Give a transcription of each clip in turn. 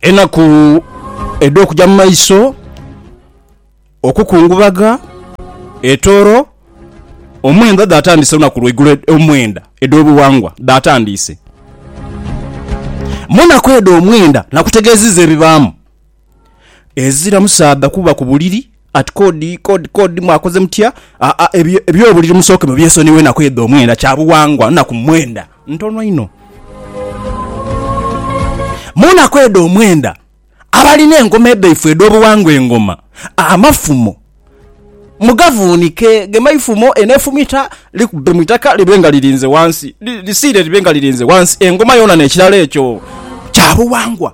enaku edh'okuja mu maiso, okukungubaga, etooro, omwenda dhatandiise olunaku lwaigulo ed- omwenda edh'obuwangwa dhatandiise. Mu naku edho omwenda nakutegeziza ebibaamu. Ezira musaadha kuba ku buliri at kod kod kod mwakoze mutya aa ebyo ebyobuliri musooke mubyesonighe enaku edho omwenda kya buwangwa naku mwenda ntono inho munaku edho omwenda abalina engoma edhaifwe edhobuwangwa engoma amafumo mugavunike gemaifumo eno efumita likubbe mwitaka libe nga lirinze wansi lisiire libe nga lirinze wansi engoma yona nekirala ekyo kya buwangwa.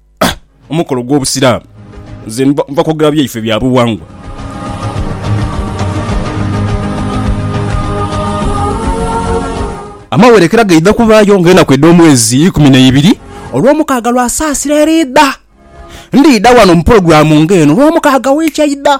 omukolo gw'Obusiraamu. Nze nva kwogera byaife bya buwangwa. Amawerekera gaidha kubaayo ng'enaku edh'omwezi ikumi na ibiri Olwomukaaga lwa Saasira eriidha. Ndidha wano mu pulogulaamu ng'eno Lwomukaaga wiiki eidha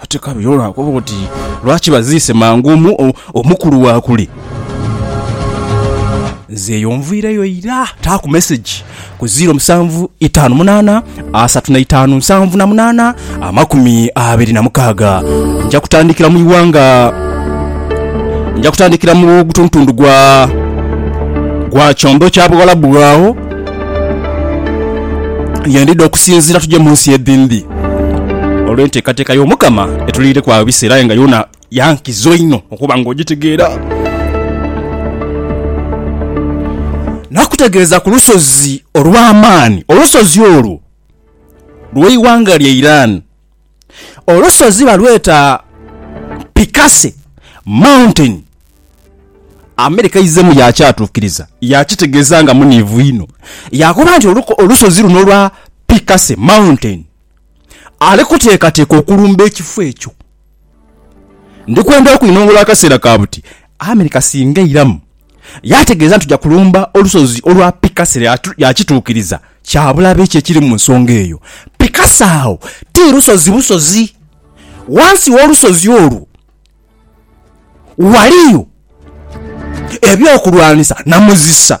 ate kale yo lwakuba oti lwaki baziise mangu omu, o- omukulu wakuli nze eyo nviireyo ira taaku meseji ku 07 5 8 asatu na itaanu nsanvu na munaana amakumi abiri na mukaaga nja kutandikira mu iwanga nja kutandikira mu gutuntundu gwa gwa kyondo kya buwalabu agho yendidha okusinzira tuje mu nsi edhindhi olw'enteekateeka y'omukama etuliireku agho ebiseera aye nga yona ya nkizo inho okuba nga ogitegeera. Naakutegeeza ku lusozi olw'amaani, olusozi olwo lw'eighanga lya Iran. Olusozi balweta Picasso Mountain. America eizeemu yaakyatuukiriza, yaakitegeeza nga muniivu inho, yaakoba nti olusozi luno olwa Picasso Mountain ali kuteekateeka okulumba ekifo ekyo. Ndi kwenda okwinhongola akaseera ka buti Amerika singa eiramu yaategeeza nti tuja kulumba olusozi olwa Picasa era yaakituukiriza. Kya bulabe ki ekiri mu nsonga eyo? Picasa agho ti lusozi busozi. Ghansi w'olusozi olwo ghaliyo eby'okulwanisa na muzisa.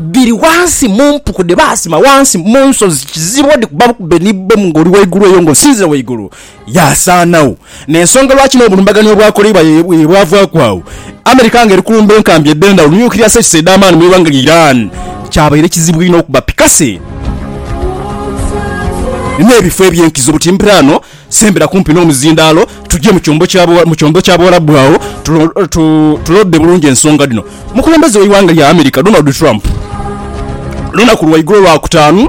Dhiri ghansi mu mpuku dhe baasima ghansi mu nsozi, kizibu odhikuba bukube ni bbomu ng'oli ghaigulu eyo ng'osinzira ghaigulu. Yaasaanagho. N'ensonga lwaki n'obulumbaganio obwakoleibwa ye bwavaaku agho, America ng'eri kulumba enkambi edh'endhawulo, nuclear sites, edh'amaani mu ighanga lya Iran. Kyabaire kizibu inho okuba pikase n'ebifo eby'enkizo buti mbiraano. Sembera kumpi n'omuzindaalo tuje mu kyombo kya mu kyombo kya Buwarabu agho tuloode bulungi ensonga dhino. Omukulembeze w'eighanga lya America, Donald Trump olunaku lwaigulo Lwakutaanu,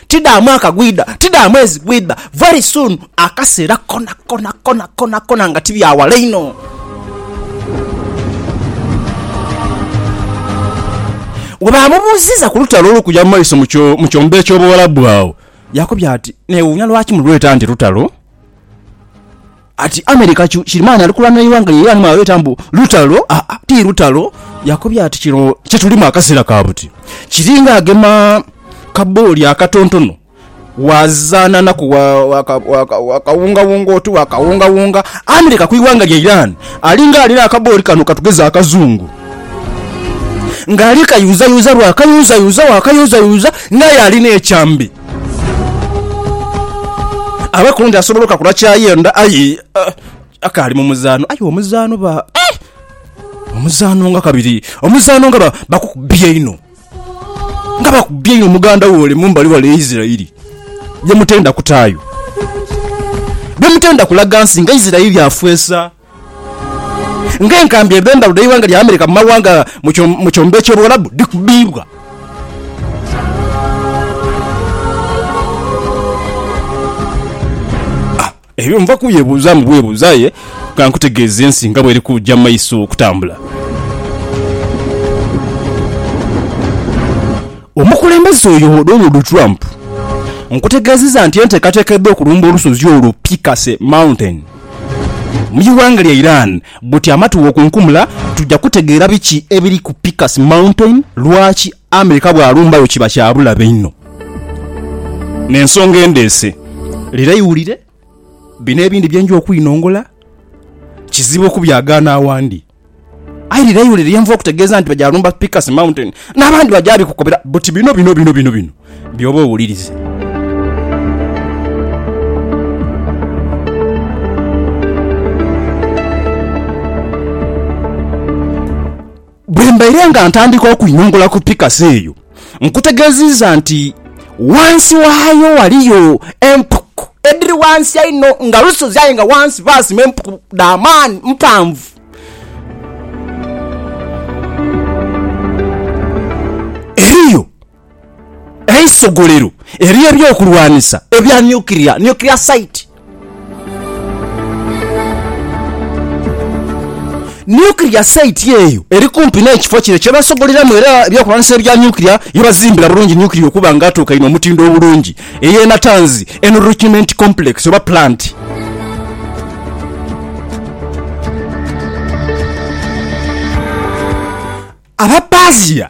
Ti dha mwaka gwidha, ti dha mwezi gwidha, very soon, akaseera konakona, konakonakona, nga ti bya wala inho. Bwe baamubuuziza ku lutalo olukuja mu maiso mu kyombo eky'Obuwalabu agho, yaakobya ati, Neewuunya lwaki mulweta nti lutalo. Ati America kyu kirimaani ali kulwana eighanga lya Iran mwalweta mbu lutalo, aa ti lutalo. Yakobye ati kino kye tulimu akaseera ka buti kiringa agema kabooli akatontono waazaananaku waakawungawunga oti waakawungawunga. America ku ighanga lya Iran alinga alina akabooli kano katugeze akazungu ng'ali kayuuzayuuza bwakayuuzayuuza waakayuuzayuuza ng'aye alina ekyambe. Abe kundi asobola okakula kyayenda aye eh, akaali mu muzaano aye omuzaano ba eh, omuzaano nga kabiri omuzaano nga ba- bakukubye inho nga bakubye inho muganda we ole mumbali wale eisirairi byemutenda kutaayo byemutenda kulaga nsi nga isirairi afweesa Ng'enkambi edh'endhalo dh'eighanga lya America mu mawanga mu kyombo eky'Obuwalabu dhikubibwa. Ebyo nva kubyebuuzaamu bwebuuza aye ka nkutegeeze ensi nga bw'eri kuja mu maiso okutambula. Omukulembeze oyo Donald Trump nkutegeezezza nti enteekateeka edh'okulumba olusozi olwo Picasso Mountain, Mu ighanga lya Iran bwoti amatu bwokunkumula tuja kutegeera biki ebiri ku Picus Mountain, lwaki America bwalumbayo kiba kya bulabe inho n'ensonga endheese. Lira iwulire bino ebindi bye nja okwinongola, kizibu okubyagaana awandi. Aye lira iwulire ye nvuba okutegeeza nti baja lumba Pikas Mountain, n'abandi baja bikukobera buti bino bino bino bino bino by'oba owulirize. Bwe mbaire nga ntandika okwinongola ku Pikas eyo, Nkutegeeziiza nti wansi waayo waliyo empuku edhiri wansi einho nga lusozi aye nga wansi baasima empuku dha maani mpanvu. Eriyo eisogolero ery'ebyokulwanisa ebya nyukiria, nuclear site, Nuclear site eyo eri kumpi n'ekifo kino kyebasogoleramu era ebyokulwanisa ebya nuclear byebazimbira bulungi nuclear okuba nga atuukaine omutindo obulungi ey'e Natanzi Enrichment Complex oba Plant. Abapasia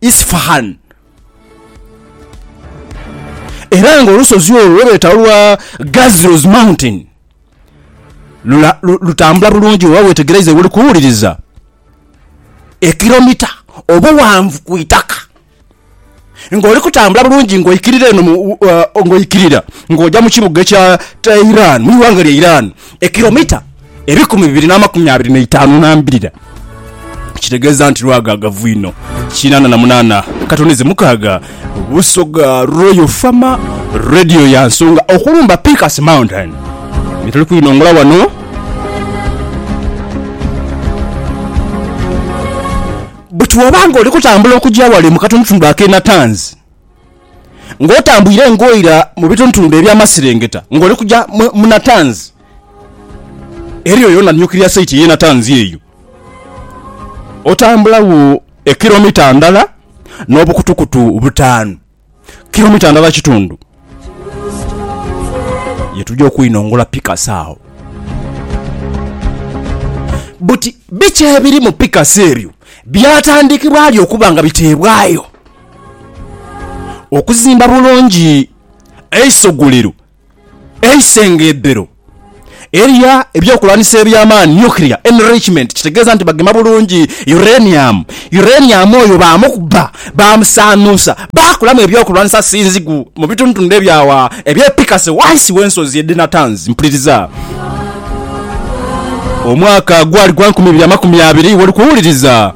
Isfahan. Era nga olusozi olwo lwebeeta olwa Ghazro's Mountain lula, lu, lutambula bulungi oba wetegereize woli kuwuliriza ekiromita obuwanvu ku itaka nga oli kutambula bulungi nga oikirira eno mu, uh, nga oikirira nga oja mu kibuga ekya Tehran mu iwanga lya Iran ekiromita ebikumi bibiri n'amakumi abiri n'eitaanu na mbirira, kitegeeza nti lwagaagavu inho. Kinaana na munaana katonize mukaaga Busoga Royal Farmer Radio ya nsonga okulumba Peakers Mountain bye tuli kwinongola wano buti bw'oba ng'oli kutambula okugya wale mu katonotondo ak'e Natanzi ng'otambwire ng'oira mu bitonotondo eby'amaserengeta ng'oli kugya mu Natanzi. Eriyo yona nuclear site ye Natanzi eyo otambula wo ekilomita ndala no bukutukutu butaanu, kilomita ndala kitundu, ye tuja okwinongola pikasi agho. Buti biki ebiri mu pikasi eryo byatandikibwa ali okuba nga bitebwayo okuzimba bulungi eisogolero? Eisengebero elya ebyokulwanisa eby'amaani, nuclear enrichment, kitegeeza nti bagema bulungi uranium. Uranium oyo baamukuba, baamusaanuusa, baakolamu ebyokulwanisa sinzigu mu bitundutundu ebya agho eby'e Picasso ghansi w'ensozi edh'e Natanz. Mpuliriza. Omwaka gwali gwa nkumi ibiri amakumi abiri, woli kuwuliriza.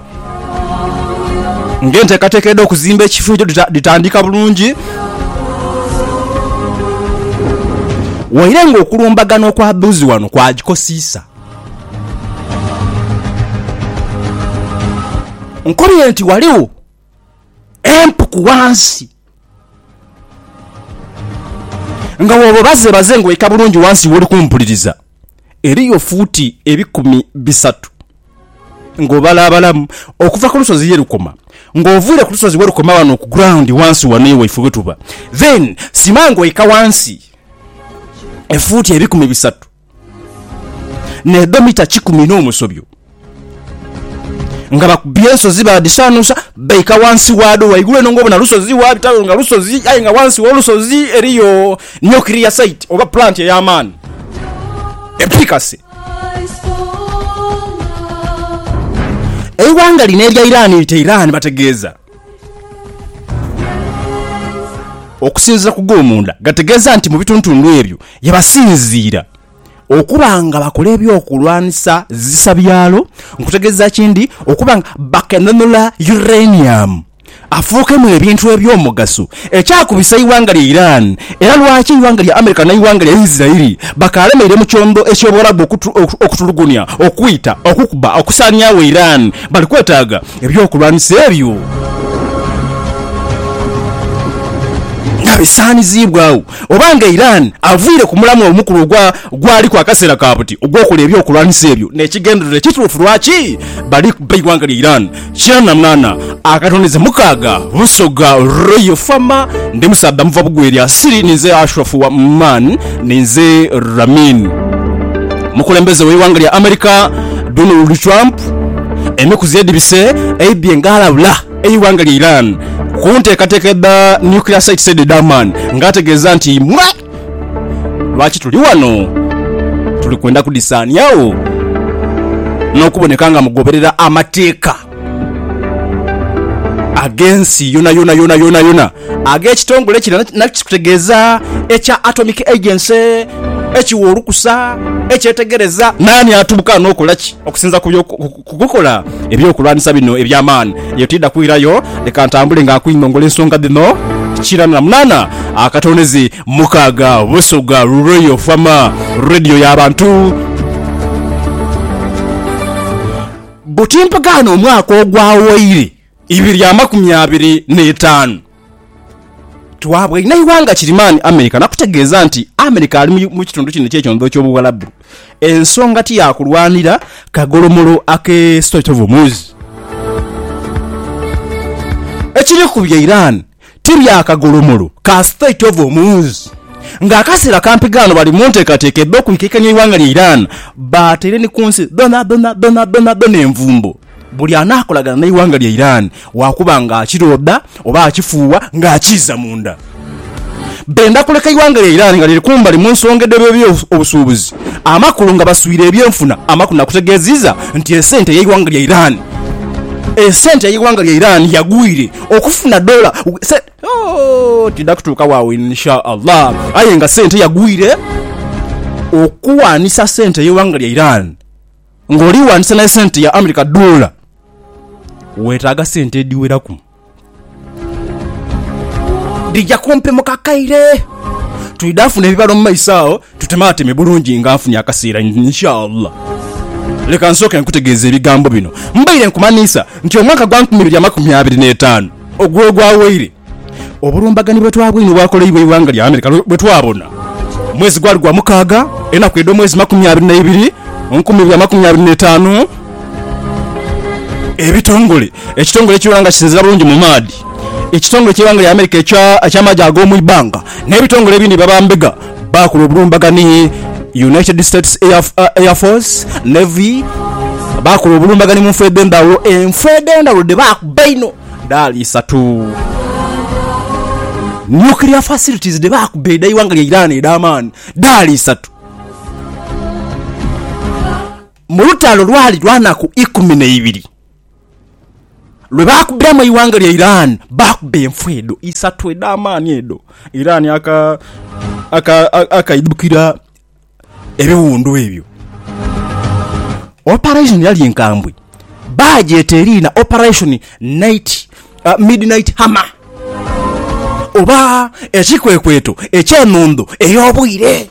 Ng'enteekateeka edh'okuzimba ekifo ekyo dhitandika bulungi, waire ng'okulumbagana okw'aboozi ghano kwagikosiisa. Nkobye nti ghaligho empuku ghansi Nga bw'oba obazebaze ng'oika bulungi wansi w'oli kumpuliriza, eriyo fuuti ebikumi bisatu ng'obalaabalamu okuva ku lusozi ye lukoma, ng'oviire ku lusozi we lukoma wano ku ground wansi wano ye waife we tuba, then sima ng'oika wansi efuuti ebikumi bisatu. n'edho mita kikumi n'omusobyo, nga bakubye ensozi baadhisaanuusa, baika ghansi waadho. Ghaigulu eno ng'obona lusozi, waabitayo nga lusozi, aye nga ghansi w'olusozi eriyo nukiriyasaiti oba pulanti ey'amaani epiikase. Eighanga lino erya Iran lite Iran bategeeza. Okusinziira ku g'omunda gategeeza nti mu bituntundu ebyo yebasinziira okuba nga bakola eby'okulwanisa zisa byalo nkutegeeza ki ndi okuba nga bakenenula uranium afuukemu ebintu eby'omugaso ekyakubisa eighanga lya Iran era lwaki eighanga lya America n'eighanga lya Israel bakaalemeire mu kyondo eky'obuwarabu okutulugunya, okwita, okukuba, okusaaniagho Iran bali kwetaaga. Eby'okulwanisa ebyo nga bisaaniziibwagho, oba nga Iran avaire ku mulamwa omukulu ogwa gwaliku akaseera ka buti ogw'okola eby'okulwanisa ebyo n'ekigendererwa ekituufu lwaki bali kubba eighanga lya Iran kyanamwana akatondeze mukaaga Busoga Royal Farmer Ndi musaadha muva bugwa erya Siri Ninze Ashraf wa Man Ninze Ramin Omukulembeze w'eighanga lya America Donald Trump Enaku zedibise eidhye nga alabula eighanga lya Iran ku ntekateka edha nuclear sites edho edha Amman nga ategeeza nti mwe lwaki tuli wano tuli kwenda kudhisaaniagho n'okuboneka nga mugoberera amateeka ag'ensi yonayona yonayona. ag'ekitongole kino nakyo kikutegeeza ekya Atomic Agency ekiwa olukusa, ekyetegereza naani atuuka n'okola ki. Okusinza ku kukola eby'okulwanisa bino eby'amaani, eyo tiidha kwirayo. Leka ntambule nga nkwingongole ensonga dhino kirana na munaana akatoonezi mukaaga Busoga Royal Farm Radio ya bantu. Butimpagana omwaka ogwawoire. ibiri amakumi abiri n'etaanu. Twabwainha ighanga kirimaani Amerika nakutegeeza nti Amerika ali mu kitundu kino eky'ekyondholo ky'Obuwarabu ensonga ti ya kulwanira kagolomolo ak'e Strait of Hormuz ekiri ku bya Iran. Tiri akagulumulu ka state of omuunz nga akasera kampi ghano bali muntekateka edho kwikekanya eighanga lya Iran batere ni kunsi dhonadhona dhonadhona envumbo buli anakolagana neighanga lya Iran wakuba nga akiroda oba akifuuwa nga akiiza munda benda kuleka eighanga lya Iran nga liri kumbali munsonga edhe byebyo obusuubuzi amakulu nga baswire ebyenfuna amakulu nakutegeziza nti esente yeighanga lya Iran esente yeighanga lya Iran yagwire okufuna dola se oh, tida kutuuka waawo insha Allah. Aye nga sente yagwire okuwanisa sente ey'eighanga lya Iran ng'oli wanisa ne sente ya America dola, weetaaga sente edhiweraku. Dhija kumpi mu kakaire. Twidha funa ebibalo mu maiso agho. Tutemateme bulungi nga nfunye akaseera inshallah. Leka nsooke nkutegeeze ebigambo bino. Mbaire nkumanhiisa nti omwaka gwa nkumi ibiri amakumi abiri n'etaanu ogw'ogwawaire, obulumbaganhi bwe twabwine obwakolaibwa eighanga lya America bwe twabona mwezi gwali gwa mukaaga enaku edh'omwezi makumi abiri na ibiri nkumi ibiri amakumi abiri n'etaanu ebitongole ekitongole ekibeera nga kisinziira bulungi mu maadhi ekitongole ky'eighanga lya America eky'amaje ag'omu ibbanga n'ebitongole ebindi bye baba mbega Baakola obulumbaganhi ni United States Air Force, Navy, baakola obulumbaganhi mu nfa edh'endhaghulo. Enfa edh'endhaghulo dhe baakuba einho dhaali isatu. Nuclear facilities dhe baakuba edha ighanga lya Iran edh'amaani dhaali isatu. Mu lutalo lwali lwa naku ikumi n'eibiri. lwe baakubiramu eighanga lya Iran baakuba enfu edho isatu edh'amaani edho Iran akaidhukira ebiwundu ebyo. Operation yali nkambwe, baagyeta eriina Operation Night, Midnight Hammer oba ekikwekweto eky'enhondho ey'obwire.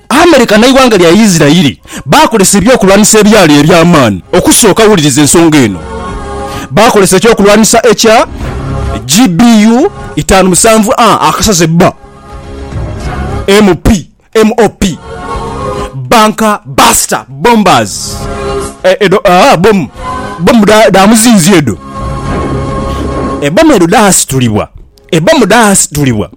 America n'eighanga lya Isirairi baakozesa ebyokulwanisa ebyali eby'amaani. Okusooka, wuliriza ensonga eno, Baakozesa ekyokulwanisa ekya GBU itaanu musanvu A akasaze ba MP, MOP, Bunker Buster Bombers. E, edho, aa, bbomu, bbomu dha, dha muzinzi edho. Ebbomu edho dhaasitulibwa. Ebbomu dhaasitulibwa.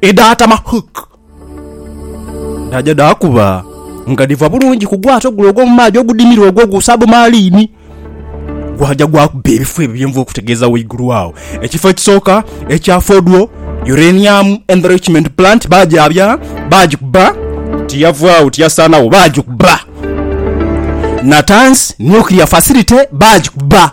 edhaatama hook dhaaja dhaakuba nga dhiva bulungi ku gwato gule ogw'omu maadhi ogudimire ogwo ogwa sabumaaliini. Gwaja gwakuba ebifo ebyo bye nva okutegeeza ghaigulu agho. Ekifo ekisooka ekya Fodwo, Uranium Enrichment Plant baagyabya, baagikuba, tiyavagho, tiyasaanagho, baagikuba. Natanz Nuclear Facility baagikuba.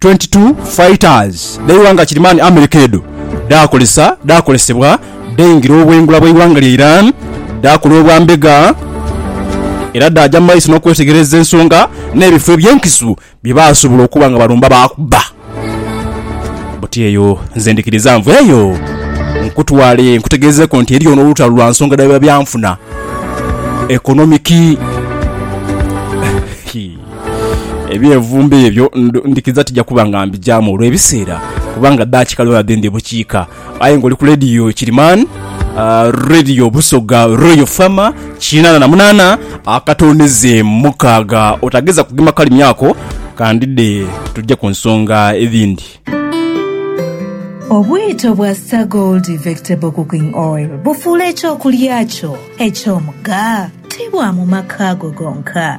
22 fighters dh'eighanga Kirimani America edho dhaakozesa dhaakozesebwa dhaingira obwengula bw'eighanga lya Iran, dhaakola obwa mbega era dhaaja mu maiso n'okwetegereza ensonga n'ebifo eby'enkizo bye baasobola okuba nga balumba baakubba. Buti eyo nze ndhikiriza nvu eyo nkutwale nkutegeezeeko nti eriyo n'olutalo lwa nsonga dha byanfuna, economic. Ebyevumbe ebyo ndhikiriza tija kuba nga mbijaamu olw'ebiseera kubanga daakika dhona dhe ndi bukiika. Aye ng'oli ku leediyo Kirimaani, leediyo Busoga Royal Fama, kinaana na munaana akatooneze mukaaga, otageza kugema kalimi ako, kandide tuje ku nsonga edhindi. Obwito bwa Sir Gold Vectable Cooking Oil bufuula eky'okulya kyo eky'omugha, ti bwa mu maka go gonka.